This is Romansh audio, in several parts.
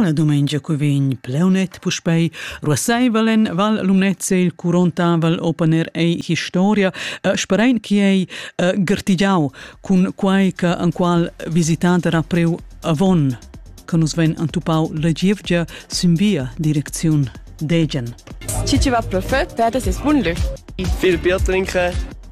La dumengia cu vegn pleunet puspei ruasseivel en Val Lumnezia il curontavel open air ei historia, eh, sperein che ei eh, gertigiau cun quei che enqual visitant era preu avon che nus ven antupau la gievgia sin via direcziun Degen. Ci va perfett, per das ist wunderlich. Viel Bier trinken.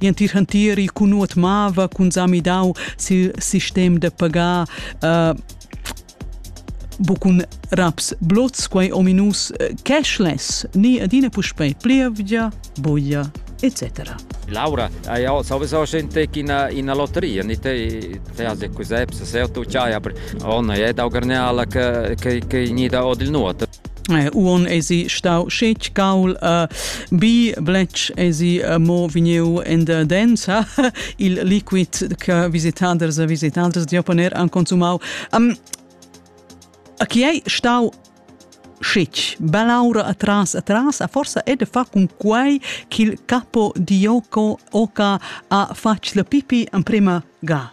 Gl'entir hantieri cun nuot mava, cun sa midau sil sistem da pagar. Uh, bucun raps blots, quei ominus eh, cashless, ni adina puspei plievgia, buglia, etc. Laura, hai sowieso gente in in lotteria, ni te te has cos'è, se tu c'hai, aber ona è da garneala che che che ni da od il nuot. Uon esi stau schec caul uh, bi bletsch esi uh, mo vegniu in der densa il liquid che visitaders e visitaders di poner an consumau. Um, a chi ei stau schec balaura atras atras a forsa è de fa con quai ch'il capo di Yoko Oka ha fatg la pipi en prima ga.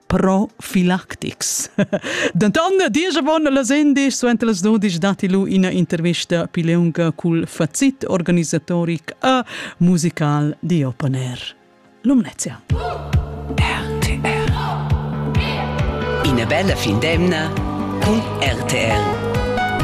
profilactics. Denton diesch von las indisch suenter las dudisch datti lu ina intervista pileunga cul facit organisatoric e musical di Open Air. Lumnezia. RTR. Ina bella fin d'emna con RTR.